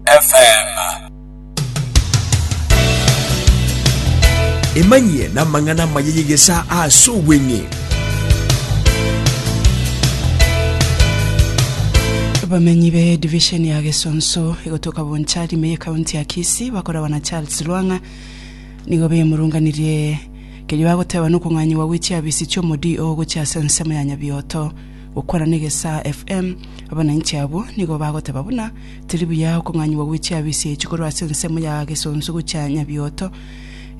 FM. Emanyie namang'ana amaya y'egesaa ase obweng'e. Abamenyi be division ya Gesonso egotoka Bonchari me y'ekaunti ya Kisii bakoragwa na Charles Lwang'a nigo bemurunganirie kerio bagoteba nokong'anyigwa gwe chiabisi chi'omodio gochia ase ensemo ya Nyabioto gokwana na egesaa FM abananchi abwo nigo bagoteba buna Tiri buya okong'anyigwa gwe chiabisiichi korwa ase ensemo ya gesonso gochia nyabioto,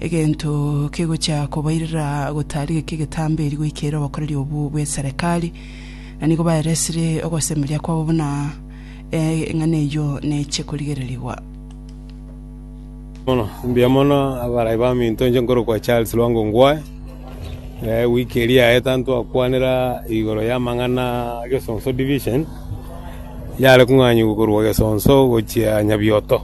egento kegochia kobairera gotarigeka egetambe eri goika ere obokoreri obwo bw'eserekari, na nigo baeresire ogosemeria kwabo buna, Ee, eng'ana eyio neche korigererigwa. Mono, mbuya mono abarai baminto, inche nkorokwa Charles Lwango Ongwae. Eh, wiki eria yaeta ntwakwanera igoro y'amang'ana a Gesonso Division, yare kong'anyigwa korwa Gesonso gochia Nyabioto.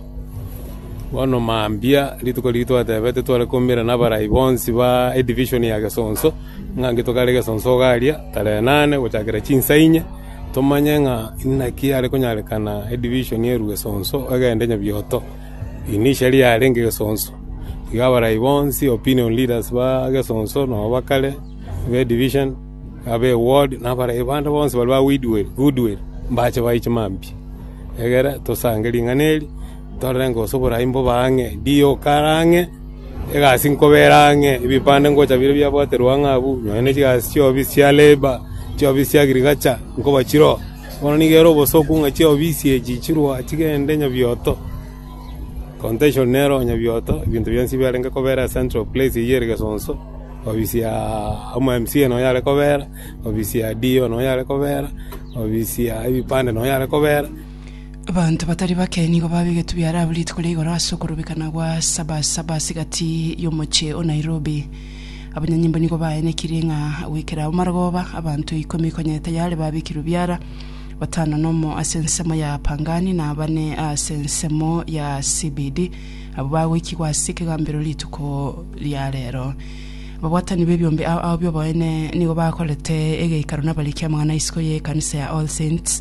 Bono mambia, rituko riria twatebete tware koumera na abarai bonsi ba edivision ya Gesonso, ng'a intwe tokare Gesonso iga aria, tarehe nane gochakera chinsa inye, Tomanye ng'a inaki are konyarekana edivision erue gesonso egende nyabioto, ini iseri yarenge gesonso. Iga abarai bonsi, opinion leaders ba gesonso na ba kare, be division, abe ward, na abarai bande bonsi baria ba goodwill, mbache bae chimambia, egere tosange ring'ana eri. Torenge gose oboraai mbobe ang'e, ndiyo okare ang'e, egasi nkobere ang'e, ebipande ngocha bire biabwaterwe ang'e abwo, nonya ne chigasi chi'oofisi chia leiba, chi'oofisi chia agriculture, nkoba chiroo. Bono nigo ere obosoku ng'a chi'oofisi echi chirwa chigende nyabioto, contention nero nyabioto, ebinto bionsi biarenge kobera ase central place eyio ere Gesonso, ofisi ya omo mca nonya yare kobera, ofisi ya DO nonya yare kobera, ofisi ya ebipande nonya yare kobera. Abanto batari bake nigo babegetwe biaraabu rituko ria igoro ase okorubekana gwa Sabasaba ase egati y'omochie o Nairobi. Abanyanyimbo nigo baenekirie ng'a goikera agwo marogoba, abanto ikomi konya etayare babekirwe biara, batano nomo ase ensemo ya Pangani na bane ase ensemo ya CBD, abwo bagoikigwa ase ekegambero rituko ria rero. Ababwatani b'ebiombe ao ao bi'oboene nigo bakorete egeikaro nabariki amang'ana a isiko y'ekanisa ya All Saints,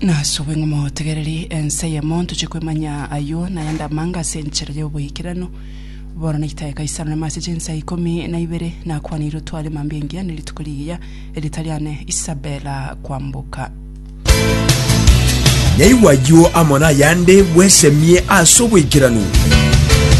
Nasubwe ng'a motegereri ense eyemo, ntoche kwemanya ayio nayande amanga ase enchera y'oboikeranu. Bono naitae Kaisaro nyuma ase chinsa ikomi na ibere, nakwanire otware mambia engiya ne rituko rigiya, erita riane Isabela kwamboka. Naigwe ayio amo nayande bwesemie ase oboikeranu.